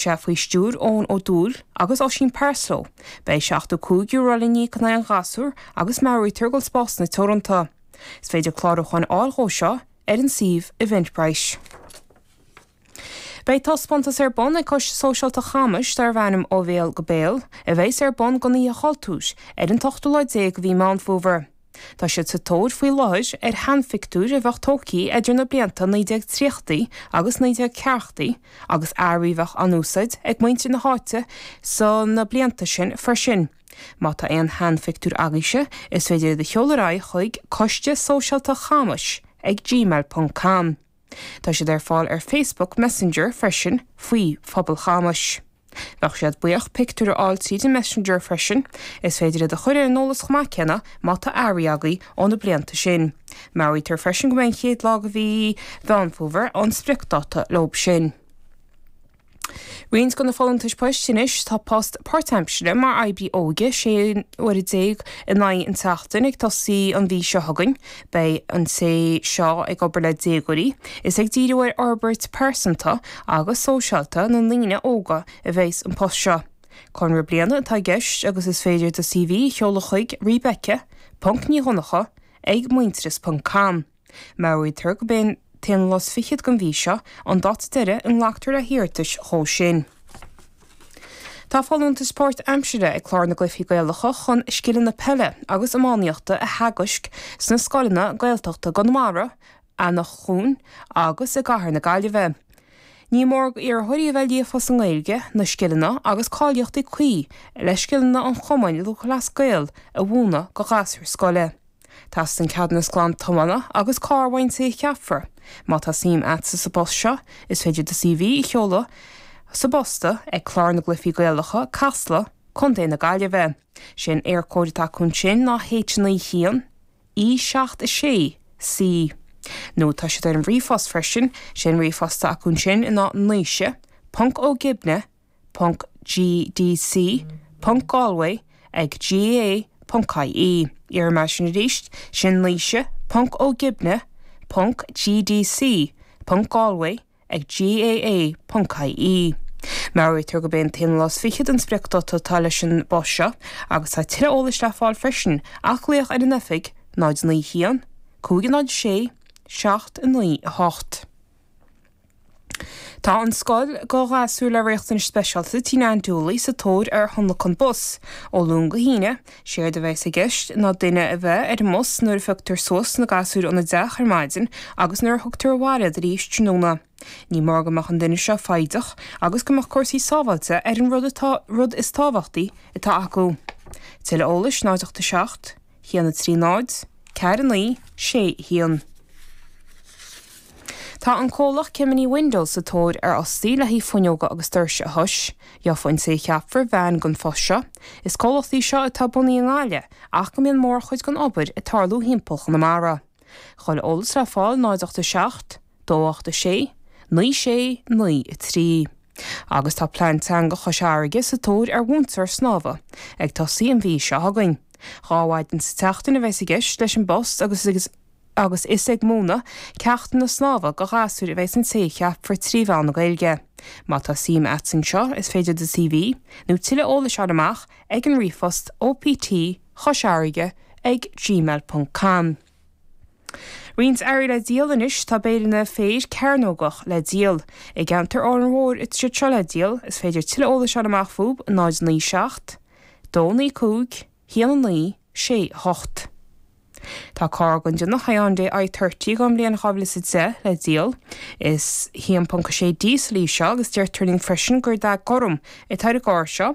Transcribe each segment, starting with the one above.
sé faoi stiúir Eoin Ó Dúill agus Oisín Parslow. Beidh €75 le n-íoc in aghaidh an ghasúir agus meabhraítear go bhfuil spásanna teoranta. Is féidir clárúcháin a fháil dhó seo ar an suíomh Eventbrite. Beidh taispeántas ar bun ag Coiste Sóisialta Chamais darb ainm Ó Bhéal go Béal, a bheas ar bun don Oíche Chultúir, ar an t-ochtú lá déag de mhí Meán Fómhair. Tá siad sa tóir faoi láthair ar sheanphictiúir a bheadh tógtha idir na blianta 1930idí agus 1940idí agus earraí a bheadh á n-úsáid ag muintir na háite sna blianta sin freisin. Má tá aon sheanphictiúir agaibhse, is féidir iad a sheoladh ar aghaidh chuig, Coiste Sóisialta Chamais ag gmail ponc com. Tá siad ar fáil ar Facebook Messenger freisin faoi Phobal Chamais. Bheadh siad buíoch pictiúir a fháil tríd an Messenger freisin. Is féidir iad a chuir ar an eolas chomh maith céanna má tá earraí agaibh ó na blianta sin. Meabhraítear freisin gurb é an chéad lá de mhí Mheán Fómhair an spriocdáta leo sin. Roinnt de na folúntais poist anois, tá post páirtaimsire mar oibrí óige, 16 uaire in aghaidh an tseachtain, ag tosaí an mhí seo chugainn. Beidh an té seo ag obair le déagóirí. Is ag díriú ar fhorbairt pearsanta agus sóisialta na ndaoine óga a bheas an post seo. Conradh bliana atá i gceist agus is féidir do CV a sheoladh chuig, Rebecca ponc Ní Dhonnacha ag Muintearas ponc com. Meabhraítear gurb é an t-aon lá is fichead den mhí seo an dáta deiridh a nglactar le hiarratais dhó sin. Tá folúntas páirt aimsire ag Clár na gCluichí Gaelacha chun scileanna peile agus iománaíochta a theagaisc sna scoileanna Gaeltachta i gConamara, Eanach Dhúin agus i gCathair na Gaillimhe. Ní mór d'iarrthóirí a bheith líofa sa nGaeilge, na scileanna agus cáilíochtaí cuí le scileanna an Chumainn Lúthchleas Gael a mhúineadh go ghasúir scoile. Teastaíonn ceadúnas glan tiomána agus carr ón té a cheapfar. Má tá suim agatsa sa bpost seo, is féidir do CV a sheoladh sa bpost ag Clár na gCluifí Gaelacha, Casla, Co. na Gaillimhe. Sé an Éircode atá acu ansin ná H91 E 7 6 C. Nó tá siad ar an ríomhphost freisin, sé an ríomhphost atá acu ansin ná naoise, ponc, Ó Gibne, gdc.galway ag gaa.ie. Déarfaidh mé sin arís, sin naoise.ogibne.gdc.galway ag gaa.ie. Meabhraítear gurb é an t-aon lá is fichead an spriocdáta atá leis an bpost seo agus tá tuilleadh eolais le fáil freisin ach glaoch ar an oifig 091 506 798. Tá an scoil, do ghasúir le riachtanais speisialta Tigh Nan Dooley sa tóir ar thionlacan bus, ó Luan go hAoine. Séard a bheas i gceist ná duine a bheith ar an mbus nuair a phioctar suas na gasúir óna dteach ar maidin agus nuair a thugtar abhaile iad arís tráthnóna. Ní mór go mbeadh an duine seo foighdeach agus go mbeadh cúrsaí sábháilte ar an rud is tábhachtaí atá acu. Tuilleadh eolais 0 8 7. 1 3 0 4 9 6 1 Tá an comhlacht Gemini Windows sa tóir ar fhostaí le haghaidh fuinneoga agus doirse a thomhas. Gheobhaidh an té a cheapfar veain don phost seo. Is comhlacht í seo atá bunaithe i nGaillimh ach go mbíonn mórchuid den obair ag tarlú thimpeall Chonamara. Tuilleadh eolais le fáil 0 8 7, 2 8 6, 9 6, 9 3 agus tá Plean Teanga Chois Fharraige sa tóir ar mhúinteoir snámha, ag tosaí an mhí seo chugainn. Dhá mhaidin sa tseachtain a bheas i gceist leis an bpost agus is ag múineadh ceachtanna snámha do ghasúir a bheas an té a cheapfar trí mheán na Gaeilge. Má tá suim a't anseo is féidir do CV nó tuilleadh eolais fháil amach ag an ríomhphost opt. Chois Fharraige ag gmail ponc com. Roinnt earraí le díol anois, Tá béileanna féir cearnógach le díol i gceantar Óráin Mhóir atá siad seo le díol, is féidir tuilleadh eolais fháil amach fúb 097 295 1968. Tá carr den déanamh Hyundai I-30 ón mbliain 2010 le díol, is 1.6 díosal í seo agus deirtear linn freisin gur dath gorm atá ar an gcarr seo.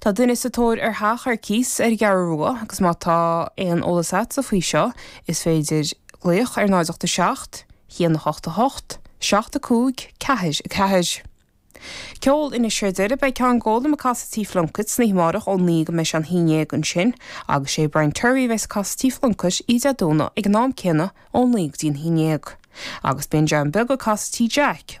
Tá duine sa tóir ar theach ar cíos ar an gCeathrú Rua agus má tá aon eolas agatsa faoi seo is féidir glaoch ar 0 8 7 1 8 8 7 5 4 4. Ceol, anois sa deireadh beidh Ceann Gólaim ag casadh Tigh Phlunkett san oíche amárach ón 9 go mbeidh sé an haon déag ansin agus sé Brian Terry a bheas ag casadh Tigh Phlunkett oíche Dé Domhnaigh ag an am céanna ón 9 go dtí an haon déag agus beidh John Beag ag casadh Tigh Jack